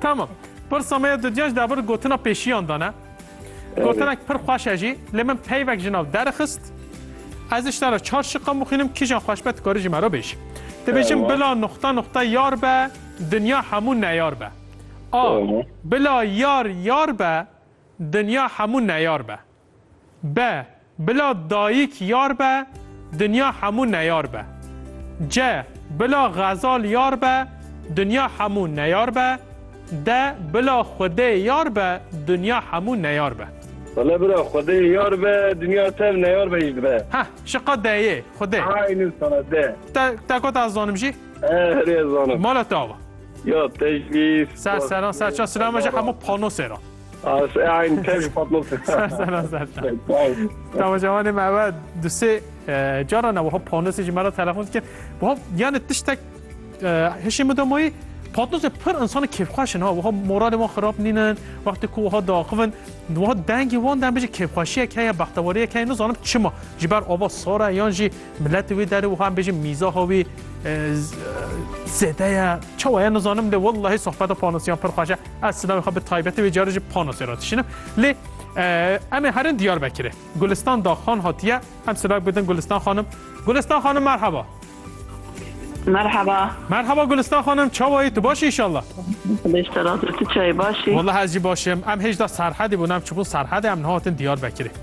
Tamam. Pirsa me ya dudyan ji dawir gotina pêşiyan da ne. Gotinek pir xweş e jî lê min peyvek ji nav derxist. Ez ji te re çar şiqan bixwînim kîjan xweş be tu karî ji me re bêjî. Dibêjim bila nuqta nuqta yar be dinya hemû neyar be. A bila yar yar be dinya hemû neyar be. Be, bila dayik yar be, dinya hemû neyar be. Ce, bila xezal yar be, dinya hemû neyar be. De, bila Xwedê yar be, dinya hemû neyar be. Wele bira Xwedê yar be, dinya tev neyar be jî dibe. Heh, şiqa de yê, Xwedê. Aynen sana, de. Te, te got ez zanim jî? Erê, ez zanim. Mala te ava? Ya, teclîs. Ser seran, ser çand, silama jî hemû panosê ra. As e aynı tev ji patlasın. Sana zaten. Tamam cavanê me eve dusê cara ne wiha panosê ji me re telefon dikir. Wiha yani tiştek hişê min damayî patnosê pir insana kêfxweşin ha wiha moralê wan xirab nînin wextê ku wiha daxivin wiha dengê wan dem bijî kêfxweşiyek heye bextewariyek heye nizanim çima ji ber ava sar e yan jî Miletê wê derê wiha em bêjin mîzaha wê zêde ye. Çawa ye nizanim lê wellahî sohbeta panosiyan pir xweş e. Ez sidavê xwe bi taybetî wê carê jî panosê re dişînim. Lê em ê herin Diyarbekirê. Gulistan Daxxan hatiye. Em silav bidin Gulistan xanim. Gulistan xanim merheba. Merhaba. Merhaba Gulistan xanim çawa yî tu baş inşallah. Beş terazê tu çayê baş î. Wellahî ez jî baş im. Em hêj da Serhedê bûn em çibûn Serhedê em niha hatin Diyarbekirê.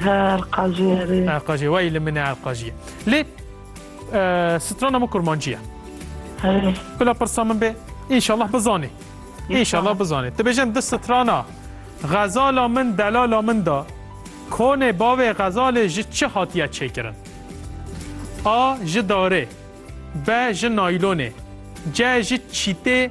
Erqajî herê. Erqajî wayî li min e Erqajî. Lê strana min kurmancî ye. Herê. Bila pirsa min bê înşallah bizanê. Înşallah bizanê. Ti bêjin di strana xezala min delala min da konê bavê xezalê ji çi hatiye çêkirin? A ji darê B ji naylonê C ji çîtê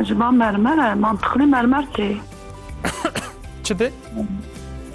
Eciba mermer e, mantiqlî mermer tê. Çi tê?